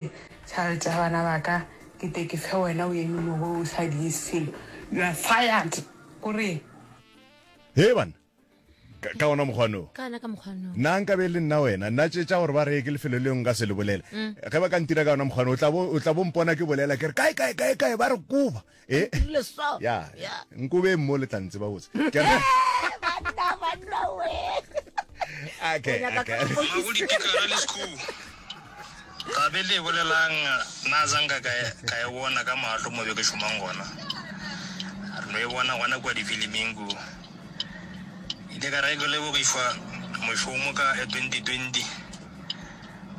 Child ya bana ba ka ke te ke fe wena o eme mo go o sa di selo. You are fired. Go re. He bana. Ka, ka ona mokgwa no. Ka ona ka mokgwa no. Na nka be le nna wena, na tše tša gore ba reye ke lefelo leo nka se le bolela. Mm. Ge ba ka ntira ka ona mokgwa no, o tla bo o tla bo mpona ke bolela ke re kae kae kae kae ba re koba. Eh. Ke dirile so. ya Ya. nkobe mo le tla ntseba botse Ke re- Banna, banna, we. Okay, O nyaka okay. ka- ga go dipikara le school ga be le bolelang na zanka ka e- ka e bona ka maatlo mo be ke šomang gona re no e bona gona kua difiliming ku ile ka re ke lebogišwa mošomo ka e 2020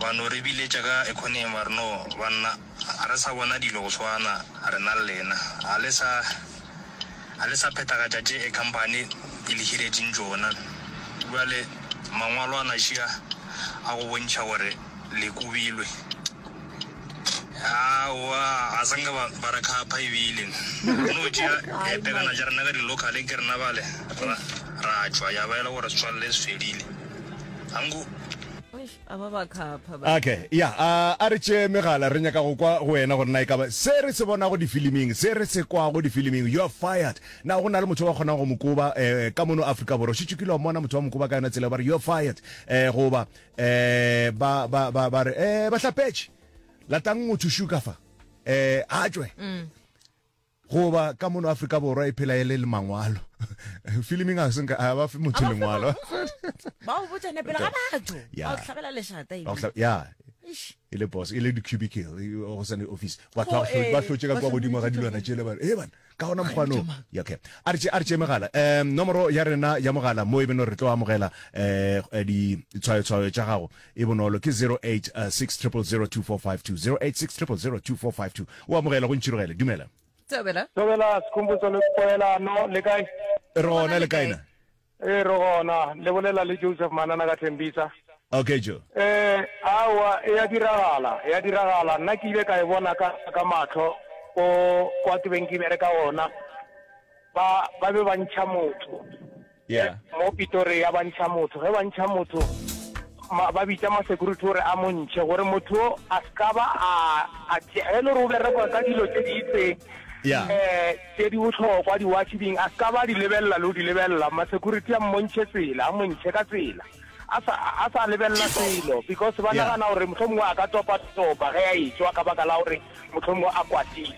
ba no re biletša ka economy ba re no banna Ga re sa bona dilo go swana rena le lena. Ga le sa, ga le sa phethagatša tše e khamphani e le hiretšeng tšona. Bjale Mangwalo a naši a, a go bontšha gore le kobilwe. Aowa, ga se nke ba, ba re khapha ebile. Re no tšea Ai pelana tša rena ka di-local ke rena bale, ra, ra tšwa, ya ba e le gore setswalle se fedile. Ga nku. Okay, ya a a re tšee megala re nyaka go kwa go wena gore na e kaba se re se bonago difiliming se re se kwago difiliming you are fired na go na le motho ba kgonang go mokoba eh, ka mono afrika borwa šitše kile wa mmona motho wa mokoba ka yona tsela ba re you are fired eh, goba eh, ba, ba, ba, ba re eh, bahlapetše latang motho shuka fa eh, a tšwe Goba ka mono Afrika Borwa e phela e le le mangwalo. Filming a se nka a ba fe motho lengwalo. Ba o botsa nepela ga batho. Ba o tlhabela leshata e. Ya. e le boss e le di-cubicle go sane office batho ba hlotse ka kwa godimo ga dilwana tšele ba e bana ka gona mokgwano okay a re a re tše megala um nomoro ya rena ya mogala mo e beno re tlo amogela um ditshwayotshwayo tša gago E bonolo, ke 0860002452, 0860002452. O amogela, go ntšhirogele. Dumela. Thobela. Thobela, Sekhumbuzo le Poelano, le kae? Re gona, le kae na? E re gona, le bolela le Joseph Manana ka Thembisa. Okay jo. Eh awa e ya diragala, e ya diragala. Nna ke ile ka e bona ka ka matlho ko kwa ke beng ke bereka ona. Ba ba be ba ntšha motho. Yeah. Mo Pitori ya bantšha motho, ge bantšha motho ma, ba bitša ma security gore a mo ntšhe gore motho a ska ba a a tše ge le gore o berekwa ka dilo tše di itseng yeah. eh tše di bohlokwa di watch ding a ska ba di lebelela le di lebelela ma security a mmontšhe tsela a montšhe ka tsela a sa a sa lebelela selo because ba yeah. nagana gore mohlomongwe a ka topa topa ge a etswa ka baka la gore mohlomongwe a kwatile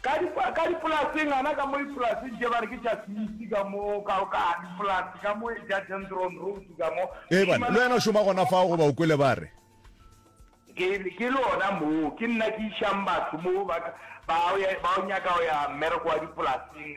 Ka di, ka dipolaseng, ana ka mo ipolaseng tše, ba re ke tša Smith ka mo, ka, ka dipolase ka mo e ja Dendron Road ka mo. Ee, bana, le wena o šoma gona fao, goba o kwele ba re. Ke, ke le ona moo, ke nna ke išang batho moo, ba, ba, ba o nyaka go ya mmereko wa dipolaseng,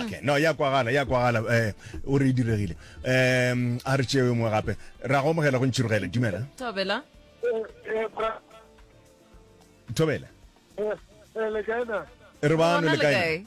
okay no ya kwagala ya kwagala eh o re e diregile um a re tšeo mongwe gape ra go amogela go ntšhirogele dumela thobela thobela re bano le kae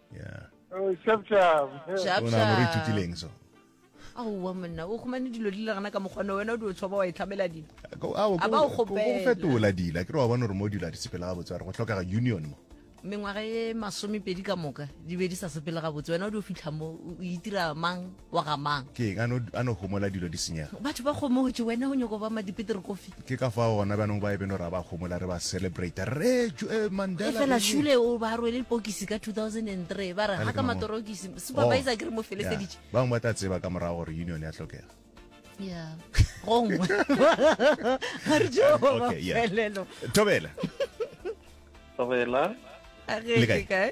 yeah oh shap shap shap shap re ithutileng so aowa monna o khumane dilo di le gana ka mokgwane wena o di o tshoba wa itlhamela dilo a ba o kgopela fetola dila ke re wa bona gore mo dilo a di sepela ga botse gore go tlhokega union mo mengwaga e masomepedi ka moka di be di sa sepele gabotse wena o di o fitlha mo o itira mang wa ga mang ke eng a no- a no homola dilo di senyega batho ba kgomotše wena o nyoko ba madipitiri kofi ke ka fao gona bjanong ba e beno ra ba homola re ba celebrate re tšo- eh, mandela efela eng? šule o ba rwele lepokisi ka 2003 ba re Bale ga ke ka mang o? matorokisi Oh. supervisor ke re mo Yeah. feleseditše ba bangwe ba tla tseba ka morago gore union ya tlhokega ya gongwe ga re jo Okay, yeah. mafelelo tobela Tobela. a Le kae? ge kae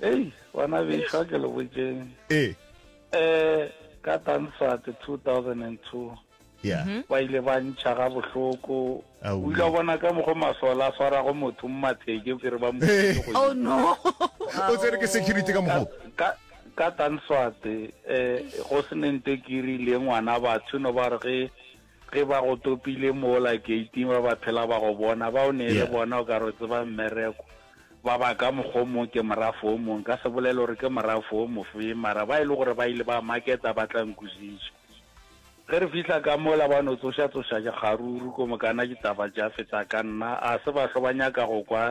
ei bona bešwa ke lo botseng ee um ka tanswat 2002 ya mhm. ba ile ba ntšha ga bohloko o ile bona ka mokgwa masola a swarago motho mmatheke o kere ba mo oh, o tsere ke security ka mokgwa ka tanswate um eh, go se nente kiri le ngwana batho no ba re ge Ge ba go topile mola keiting ba ba phela ba go bona, ba o ne e le bona o ka re o tseba mmereko, ba ba ka mokgwa o mong ke morafo o mong, nka se bolele gore ke morafo o mofeng, mara ba e le gore ba ile ba maketa ba tla nkwešiša. Ge re fihla ka mola ba no tsošatsoša kgaruru, ko mokana ditaba tša feta ka nna, a se bahlo ba nyaka go kwa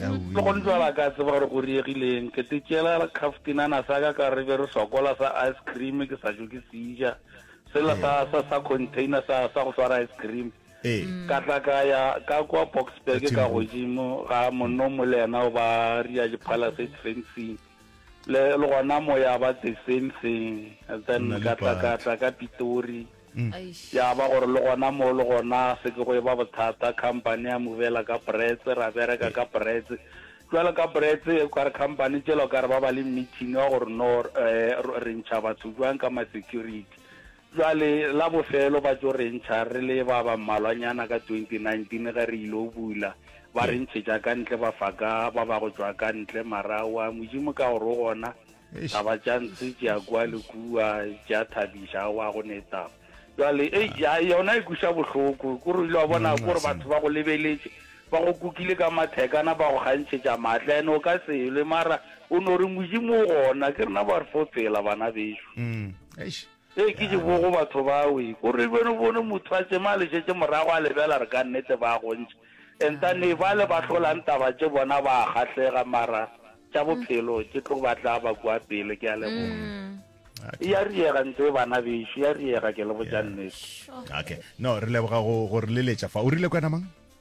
le gone jwala ka tseba gore go riegileng ke te tšela kaftinana sa ka ka re be re sokola sa ice cream ke sa jo ke seja sela sa sa sa container sa sa go swara ice cream ee ka tla ka ya ka kwa boxburg Ka ka Thembung. godimo ga monno mo le yena o ba ria diphalase fencing le le gona moya ba the same thing then Nna ka tla ka Lepati. tla ka pitori Ya ba gore le gona moo le gona se ke go e ba bothata, company ya movela ka Brits, ra bereka ka Brits. Jwale ka Brits, o ka re company tšela o ka re ba ba le meeting ya gore no um re ntšha batho jwang ka ma-security. Jwale la bofelo ba tšo re ntšha re le ba ba mmalwanyana ka twenty nineteen ge re ile go bula, ba re ntšhetša ka ntle ba fa ka ba ba go tšwa ka ntle. Mara wa Modimo ka gore o gona, Taba tša ntshe tša kwa le kua tša thabiša wa go neta jwale ei ya yona e kuša bohloko ko re ile wa bona ko re batho ba go lebeletše ba go kukile ka mathekana ba go gantšhetša maatla ene o ka selwe mara o no re modimo o gona ke rena ba re fo tsela bana beso mm, Ee, ke tše bogo batho ba we. Ko re beno bone motho a tsema a le šetše morago a lebjala re ka nnete ba gontši. Enta ne bale ba hlolang taba tše bona ba a kgahlega mara tša bophelo tše tlo ba tla ba kua pele. Ke a leboga. Okay. Ya riega ntse bana bešo ya riega ke le botša nnete. Okay. No re leboga go go re leletša fa. O rile kwena mang?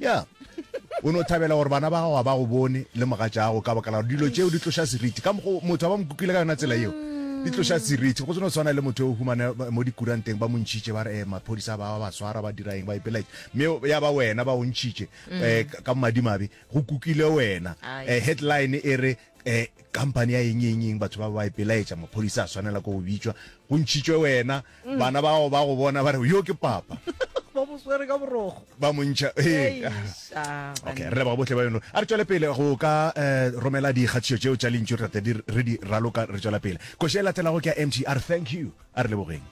ya o ne o thabela gore bana ba gago ba go bone le mogatša gago ka bakala dilo tšeo di tloša seriti ka mokgo motho ba mo kukwile ka yona tsela eo di tloša seriti go tseno tshwana le motho o humane mo dikuranteng ba mo ntšhitše ba re um maphodisa ba ba swara ba diraeng ba ipelae mme ya ba wena ba o ntšhitše um ka madimabe go kukile wena um headline e re um company ya eng eng eng batho ba ba ipelaetša maphodisa a tshwanela ko go bitswa go ntšhitšwe wena Bana ba gago ba go bona ba re, yo ke papa. ba mo swere ka borogo ba montšha ee okay re leboga botlhe ba yono a re tswele pele go ka eh, romela dikgatišo tšeo tša lentšu re tate re di raloka re tswela pele koše e latelago ke ya mtr thank you a re lebogeng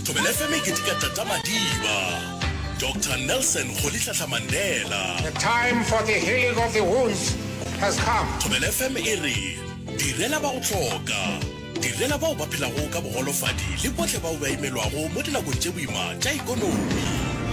Thobela FM e ketika Tata Madiba. Doctor Nelson Rolihlahla Mandela. The time for the healing of the wounds has come. Thobela FM e re, Direla ba go hloka. Direla bao ba phelago ka bogolofadi le bohle bao ba imelwago mo dinakong tše boima tša ekonomi.